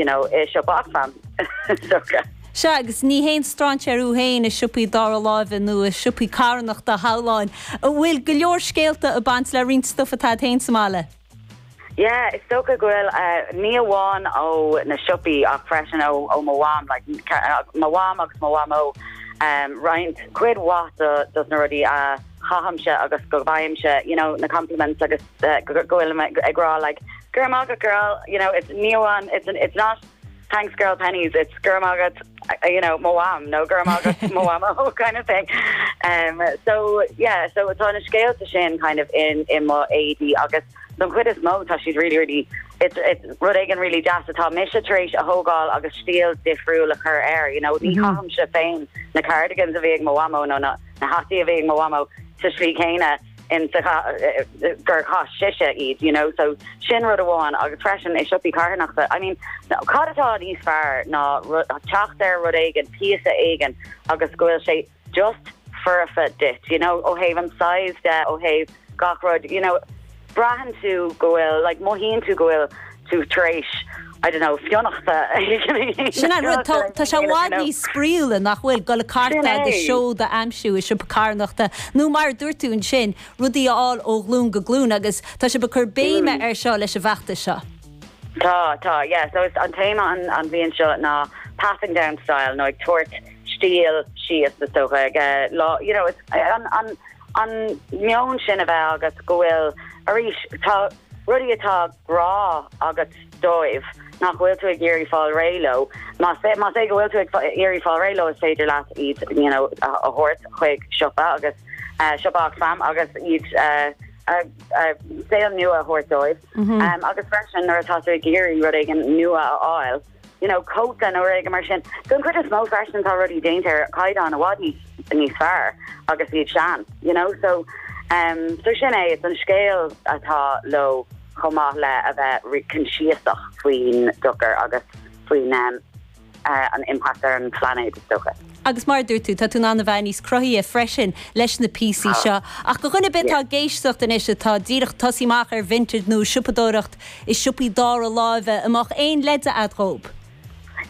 you know, i siopa Oxfam, socra. Sea, agus ní haon strainséir thú féin i siopaí dara láimhe nó i siopaí carthanachta, a Shiomháin, a bhfuil go leor scéalta ag baint le roinnt stuif atá agat féin sa mbaile. Yeah, is dócha go bhfuil, ní amháin ó na siopaí ach freisin ó mo mham, like, mo mham agus mo mhamó, roinnt, cuid mhaith dos na rudaí a chaithimse agus go bhfaighimse, you know, na compliments agus. go bhfuil mé ag rá like Go raibh maith agat girl you know it's ní amháin it's it's not thanks girl Penneys it's go raibh maith agat you know mo mham nó go raibh maith agat mo mhamó kind of thing. Umm so yeah so tá na scéalta sin kind of in in m'éadaí agus don chuid is mó tá siad really really it's it's rud éigin really deas atá mise tar éis a thógáil agus stíl difriúil a chur air you know ní chaithimse féin na cardigans a bhí ag mo mhamó nó na na hataí a bhí ag mo mhamó sa slí céanna. gur chaith sise iad, you know, so sin rud amháin agus freisin i siopaí carthanachta, I mean, cad atá níos fearr ná teacht ar rud éigin, píosa éigin agus go bhfuil sé just foirfe duit, you know, ó thaobh an size de, ó thaobh gach rud, you know, braitheann tú go bhfuil, like, mothaíonn tú go bhfuil, tú tar éis I don't know fionnachta. Sin an rud, tá sé i bhfad níos spraíúla, nach bhfuil, dul ag cartadh agus seod a aimsiú i siopa carthanachta nó, mar a dúirt tú ansin, rudaí a fháil ó ghlúin go glúin agus tá sibh ag cur béime air seo leis an bhfeachtas seo. Tá, tá, yeah, so is an téama an bhliain seo ná passing down style nó ag tabhairt stíl síos is dócha like, you know, an meon sin a bheith agat go bhfuil arís tá rudaí atá grá agat dóibh, nach bhfuil tú ag iarraidh fáil réidh leo. Más é más é go bhfuil tú ag iarraidh fáil réidh leo is féidir leat iad you know a thabhairt chuig siopa agus siopa Oxfam agus iad a saol nua a thabhairt dóibh. Agus freisin nuair atá tú ag iarraidh rud éigin nua a fháil, you know, cóta nó rud éigin mar sin. Don chuid is mó freisin tá rudaí déanta ar chaighdeán i bhfad níos níos fearr agus iad sean, you know, so um so sin é, is an scéal atá leo chomh maith le a bheith really coinsiasach faoin dochar agus faoin um an impact ar an bplainéad is dócha. Agus mar a dúirt tú, tá tú in ann a bheith níos cruthaithí freisin leis na píosaí seo. Ach do dhuine ar bith atá ag éisteacht anois, atá díreach tosaithe amach ar Vinted nó siopadóireacht i siopaí dara láimhe, an mbeadh aon leid a'd dhób?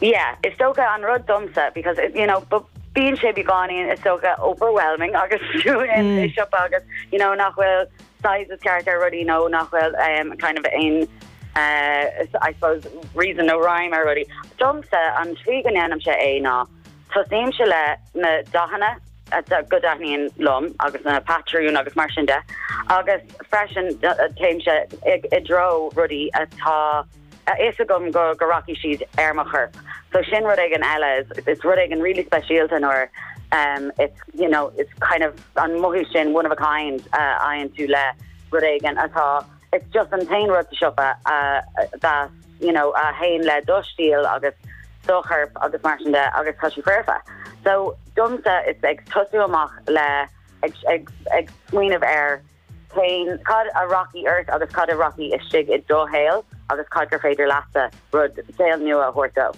Yeah, is dócha an rud domsa because it, you know, but bíonn sé beagáinín is dócha overwhelming agus tú i siopa agus you know nach bhfuil sizes ceart ar rudaí nó nach bhfuil kind of aon I suppose reason nó rhyme ar rudaí. Domsa, an tslí go ndéanaimse é ná tosnaímse le na dathanna go dtaitníonn liom agus na patrúin agus mar sin de agus freisin téimse i dtreo rudaí atá a fhios agam go go rachaidh siad ar mo chorp so sin rud éigin eile is is rud éigin really speisialta nuair um it's you know it's kind of an mothú sin one of a kind a fhaigheann tú le rud éigin atá it's just an t-aon rud sa siopa a bheas you know a théann le do stíl agus do chorp agus mar sin de agus tá sí foirfe so domsa ag tosú amach le ag ag ag smaoineamh ar féin, cad a rachaidh ort agus cad a rachaidh istigh i do shaol agus cad gur féidir leatsa rud, saol nua a thabhairt dó.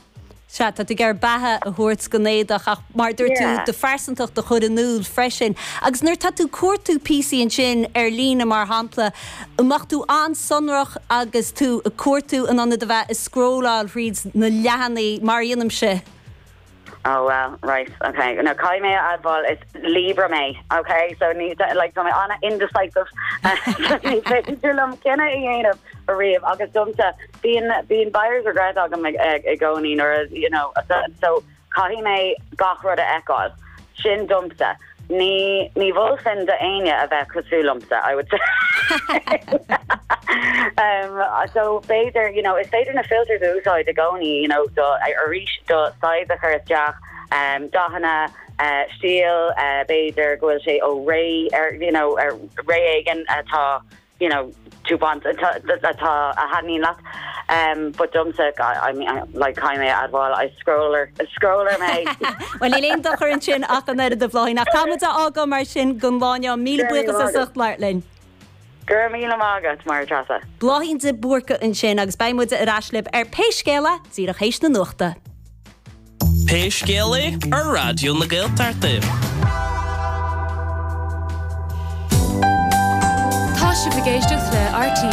Sea, tá tú ag iarraidh beatha a thabhairt don éadach ach mar a dúirt tú, do phearsantacht a chur in iúl freisin. Agus nuair atá tú ag cuartú píosaí ansin ar líne mar shampla, an mbeadh tú an-sonrach agus tú ag cuartú in ionad a bheith ag scrólláil thríd na leathanaigh mar a dhéanaimse? Oh well right ok no caithfidh mé a admháil is Libra mé ok so ní like tá mé ana indecisive ní féidir liom cinneadh a dhéanamh ariamh agus domsa bíonn bíonn buyers regret agam i gcónaí nuair a you know so caithfidh mé gach rud a fheiceáil sin domsa. Ní, ní mholfainn d'éinne a bheith cosúil liomsa, I would say. So b'fhéidir, you know, is féidir na filters a úsáid i gcónaí, you know, do, arís, do size a chur isteach, dathanna, stíl, b'fhéidir go bhfuil sé ó ré, ar, you know, ar ré éigin atá. you know, do you want, atá a thaitníonn leat, ehm, but domsa, I mean, like, caithfidh mé a admháil, I scroller, scroller mé. Bhuel, níl aon dochar ansin ach an oiread, a Bhláithín, ach caithfidh muid é a fhágáil mar sin don lá inniu, míle Go raibh míle buíochas as maith agat. ucht labhairt linn. Go raibh míle maith agat, a Mháire Treasa. Bláithín de Búrca ansin agus beidh muid ar ais libh ar Pé Scéal É díreach théis na nuachta. Pé scéal é, ar Raidió na Gaeltachta. Tá sibh ag éisteacht le RTÉ.